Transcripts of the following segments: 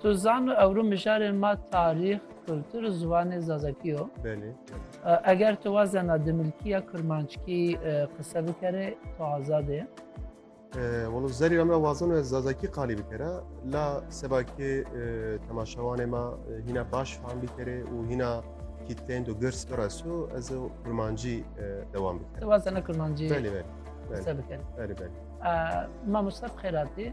Tu zan û ewro mijarên ma tarîx, kultur û ziwanê zazakî yo. Belê. Eger tu wazena di milkî ya kurmanckî qise bikerê, tu azad ê. Walo zerî em re wazan ez zazakî qalî bikere. La seba kê temaşewanê ma hîna baş fam bikerê û hîna kîteyên do girs bireso ez ê kurmancî dewam bikerê. Tu wazena kurmancî qise bikerê. Belê belê. Mamosta bi xêr hatî.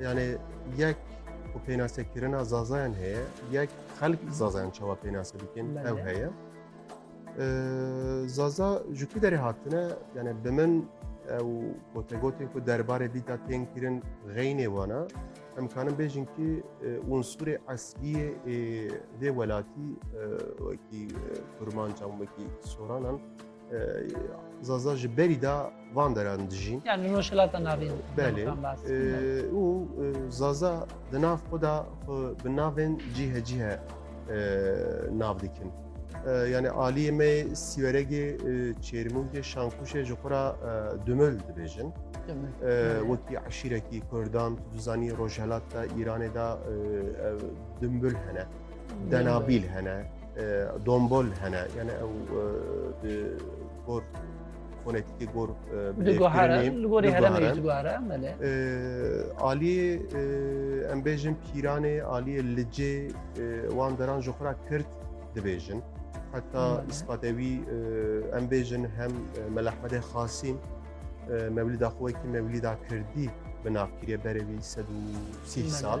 Yani yek ku pênasekirina zazayan heye, yek xelk zazayan çawa pênase dikin ew heye. Zaza ji ku derê hatine yani bi min ew gotegotên ku derbarê vî da tên kirin xeynê wana em kanin bêjin kî unsurê esliyê ê vê welatî wekî kurmancan wekî soranan Zaza ji berî da van deran dijî. Yani rojhilata navê. Belê. Û Zaza di nav xwe da xwe bi navên cîhe cîhe nav dikin. Yani aliyê me sîweregê çêrmûngê şankuşê ji xwe ra dumil dibêjin. Wekî eşîrekî Kurdan tu zanî rojhelat da Îranê da dimbul hene. Denabîl hene. Dombol hene yani ew di gor fonetîkê gor aliyê em bêjin pîranê aliyê licê wan deran ji xura kirt dibêjin heta îspatê wî em bêjin hem melehmedê xasîn mewlîda xwekî mewlîda kirdî bi navkirê berevî sed û sî sal.